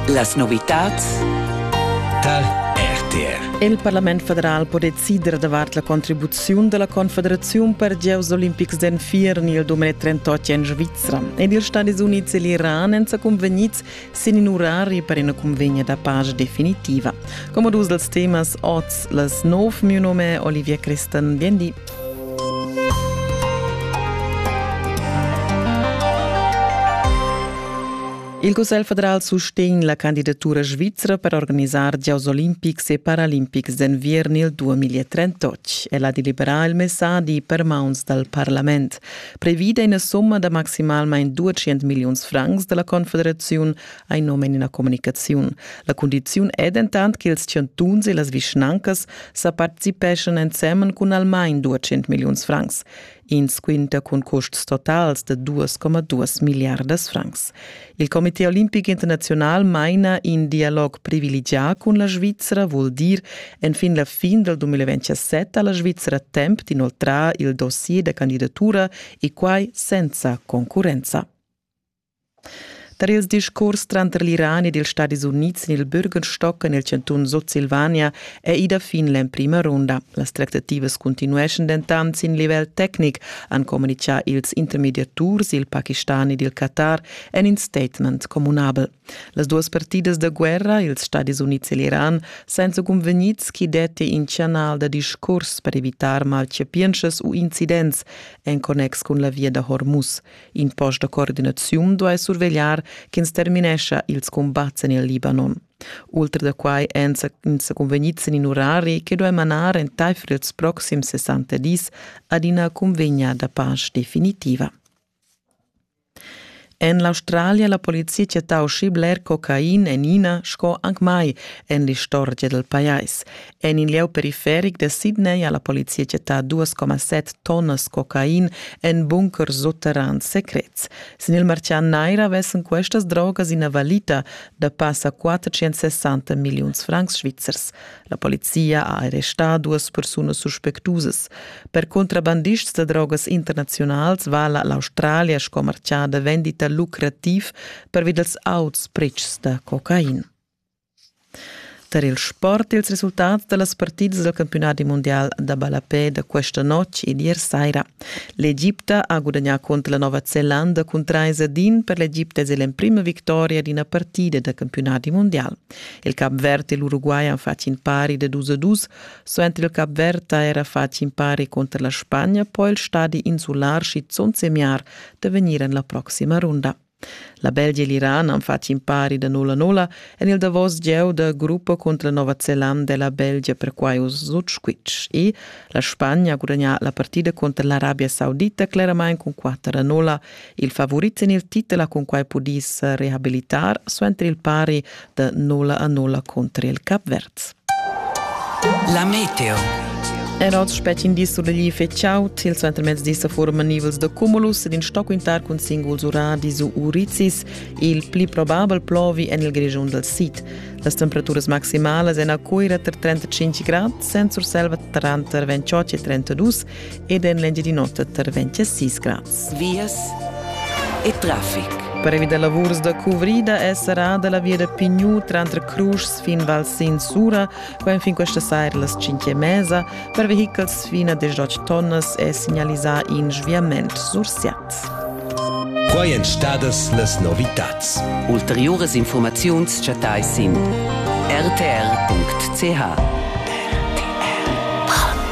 Las novitads tar RTR. Il Parlament federal po decider davart la contribuziun della Confederaziun per gieus olimpics d'enfiern il 2038 en Svizzera. Ed ils Stati Uniti e l'Iran èn sa convegnids sin in orari per una convegna da pace definitiva. Come dus dels temas oz les nov, mio nome è Olivia Cristan. Bien di. Il Cussegl federal sustegn la candidatura svizra per organisar giocs olimpics e paralimpics d'enviern il 2038. El ha deliberà il messadi per mauns dal parlament. Previda ina somma da maximalmain 200 milliuns francs da la Confederaziun ein num en ina communicaziun. La cundiziun è dentant che ils chantuns e las vischnancas sa participeschan ensemen cun almain 200 milliun francs. Ins quinta cun custs totals de 2,2 milliardas francs. Il Comité olimpic internazional maina in dialog privilegià cun la Svizzera, vul dir enfin la fin del 2027 ha la Svizzera temp d'inoltrar il dossier da candidatura e quai senza concurrenza. Tar ils discurs tranter l'Iran ed ils Stadis Unids sin il Bürgerstock en il chantun Sutsilvania è ida fin l'emprima runda. Las tractativas cuntinueschan dentant sin livel tecnic, han communitgà ils intermediaturs, il Pakistan ed il Qatar en in statement communabel. Las duas partidas da guerra, ils Stadis Unids e l'Iran, senza cunvegnids chi detti in chanal da discurs per evitar malchapientschas u incidents en connex cun la via da Hormuz. In post da coordinaziun duai survegliar ch'ins terminescha ils cumbats en il Libanon. Ultra da quai èn ins convegnids en in urari che duai manar entaifer ils proxims 60 dis ad ina cunvegna da pace definitiva. En l'Australia la polizia ha tau schi bler cocain en ina sco anc mai en l'istorgia dal pajais. En in lieu periferic da Sydney ha la polizia chattà 2,7 tonnas cocain en bunkers sutterrans secrets. Sin il martgà nair avessan questas drogas ina valita da passa 460 milliuns francs svizzers. La polizia ha arrestà duas persunas suspectusas. Per contrabandists da drogas internaziunals vala l'Australia sco martgà da vendita lucrativ pervi dals auts pretschs da cocain. Tar il sport ils resultats da las partidas dal campiunadi mundial da ballapè da questa notg ed ier saira. L'Egipta ha gudagnà cunter la Nova Zelanda cun trais ad in per l'Egipta es l'emprima victoria d'ina partida da campiunadi mundial. Il Cap Verd e l'Uruguay han fatg in pari da dus a dus, suenter il Cap Verd ha era fatg in pari cunter la Spagna, poi il stadi insular schizunt semiar da vegnir en la proxima runda. La Belgia e l'Iran han fatg impari da nulla nulla en il davos gieu da gruppa cunter la Nova Zelanda e la Belgia perquai uss sut squitsch. E la Spagna ha gudagnà la partida cunter l'Arabia Saudita cleramain cun 4 a 0. Il favurit en il titel ha cunquai pudì sa rehabilitar suenter il pari da nulla a nulla contro il Capverz. La meteo. Er oz spet in dis oder gli feciau, til suenter mezz dis a forma nivels de cumulus ed in stocquintar cun singuls uradis u uricis, il pli probabel plovi en il grigiun del sid. Las temperaturas maximalas en a Cuira tra 35 grad, Sent Surselva tranter 28 e 32 ed en l'Engiadinota tra 26 grad. vias e traffic. Previ da lavurs da cuvrida è serrada la via da Pigniu tranter Cruschs fin Val Sin Sura, qua enfin questa saira las 5 e mesa. Per vehichels fin a 18 tonnas è signalisà in sviament sur Siat. Quai èn stadas las novitads. Ulteriuras informaziuns chattai sin rtr.ch.